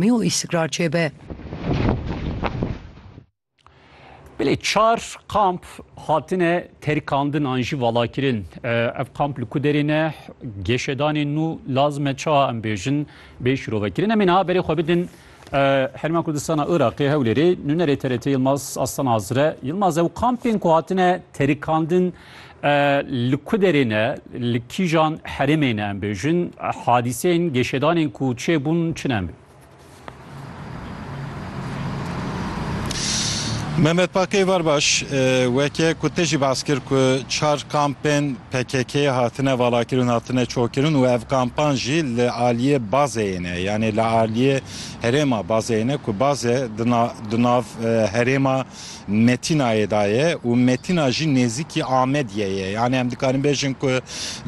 mî û îstikrar çêbe. Belê çar kamp hatine terikandin an jî valakirin. Ev kamp li ku derê ne geşedanên nû lazime çawa em bêjin bê şirovekirin. Em ê niha berê xwe bidin Herêma Kurdistana Iraqê Hewlêrê nûnerê TRT Yilmaz Aslan Azire. Yilmaz ew kampên ku hatine terikandin E, li ku derê ne, li kîjan herêmê ne em bêjin, hadîseyên geşedanên ku çêbûn çi ne em bê? Mehmet Pakê var baş e, weke ku te jî bas kir ku çar kampên PKK'ê hatine valakirin, hatine çokirin û ev kampan jî li aliyê bazeyê ne, yanê li aliyê herêma bazeyê ne ku baze di na- di nav e, herêma Metînayê de ye û Metîna jî nêzîkî Amediyê ye. Yanî em dikarin bêjin ku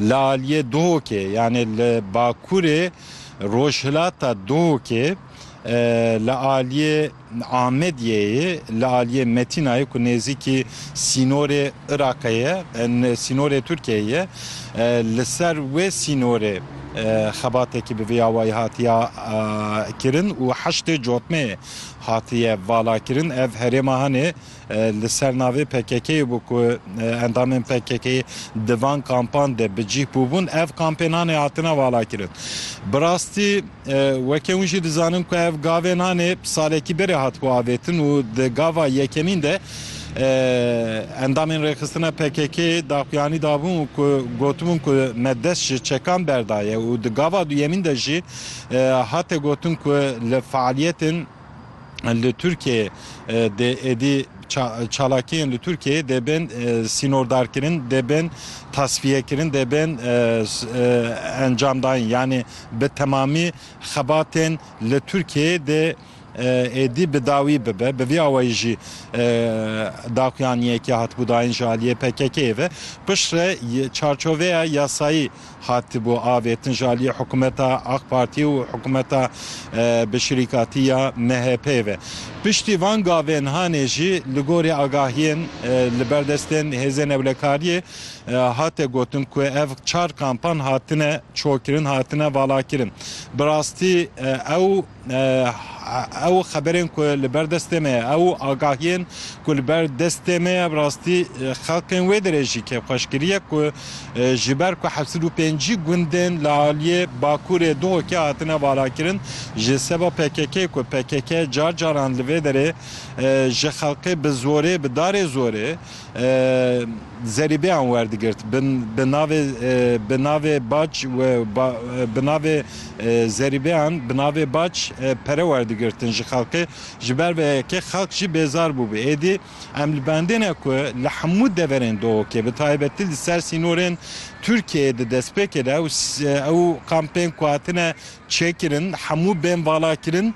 li aliyê Duhokê yanî li bakurê rojhilata Duhokê li aliyê Amediyeyê li aliyê Metînayê ku nêzîkî sînorê Iraqê ye sînorê Tirkiyeyê ye li ser wê sînorê xebatekî bi vê awayî hatiye kirin û heştê cotmeyê Hatiye valakirin ev herêma Hanê li ser navê PKK'ê bû ku endamên PKK'ê di van kampan de bi cih bûbûn. Ev kampên Hanê hatine valakirin. Bi rastî weke hûn jî dizanin ku ev gavên Hanê salekî berê hatibû avêtin û di gava yekemîn de endamên rêxistina PKK'ê daxuyanî dabûn ku gotibûn ku me dest ji çekan berdaye û di gava duyemîn de jî Hate gotin ku li fealiyetên li Tirkiyeyê dê êdî çalakiyên li Tirkiyeyê dê bên sînordarkirin, dê bên tasfiyekirin, dê bên encamdayîn. Yanî bi temamî xebatên li Tirkiyeyê dê êdî bi dawî bibe. Bi vî awayî jî daxuyan yekê hatibû dayin ji aliyê PKK'ê ve. Pişt re çarçoveya yasayî hatibû avêtin ji aliyê hikûmeta Ak Partî û hikûmeta bi şirîkatî ya MHP'ê ve. Piştî van gavên hanê jî li gorî agahiyên li ber destên Hêzên Ewlekariyê hate gotin ku ev çar kampan hatine çokirin, hatine valakirin. Bi rastî ew. Ew xeberên ku li ber destê me ye, ew agahiyên ku li ber destê me ye bi rastî xelkên wê derê jî kêfxweşkirî ye ku ji ber ku heft sed û pêncî gundên li aliyê Bakurê Duhokê hatine valakirin ji seba PKK'ê ku pkk car caran li vê derê ji xelkê bi zorê bi darê zorê zerîbeyan werdigirt bi navê bi navê bac û bi navê zerîbeyan bi navê bac pere werdigirtin ji xelkê ji ber vê yekê xelk jî bêzar bûbû êdî em li bendêne ku li hemû deverên dohokê bi taybetî li ser sînorên Tirkiyeyê di destpêkê de ew kampên ku hatine çêkirin hemû bên valakirin.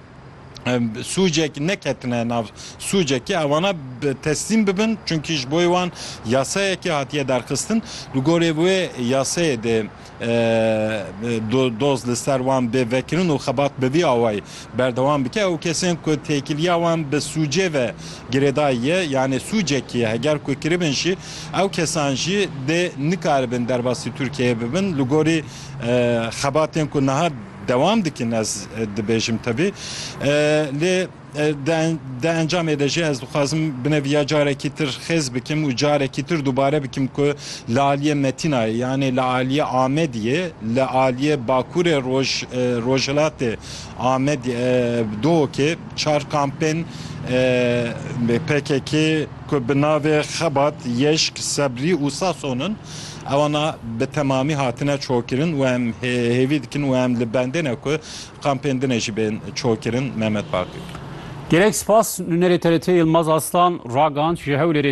sûcek neketine nav sûcekê ewana teslîm bibin çunkî ji boyê wan yasayekê hatiye derxistin li gorê wê yasayê de doz li ser wan bê vekirin û xebat bi vî awayî berdewam bike ew kesên ku têkiliya wan bi sûcê ve girêdayî ye yanê sûcekî ye heger ku kiribin jî ew kesan jî dê nikaribin derbasî Tirkiyeyê bibin li gorî xebatên ku niha Dewam dikin ez dibêjim tevî lê di encamê de jî ez dixwazim binevîya carekî tir xêz bikim û carekî tir dubare bikim ku li aliyê Metînayê yanê li aliyê Amediyê li aliyê Bakurê roj rojhilatê Amed Dûokê çar kampên PKK'ê ku bi navê Xebat, Yeşk, Sebrî û Sason in. Ewana bi temamî hatine çokirin û em hêvî dikin û em li bendê ne ku kampên din e jî bên çokirin. Mehmet Baqir. Gelek spas, nûnerê TRT'ê Yilmaz Aslan ragihand ji Hewlêrê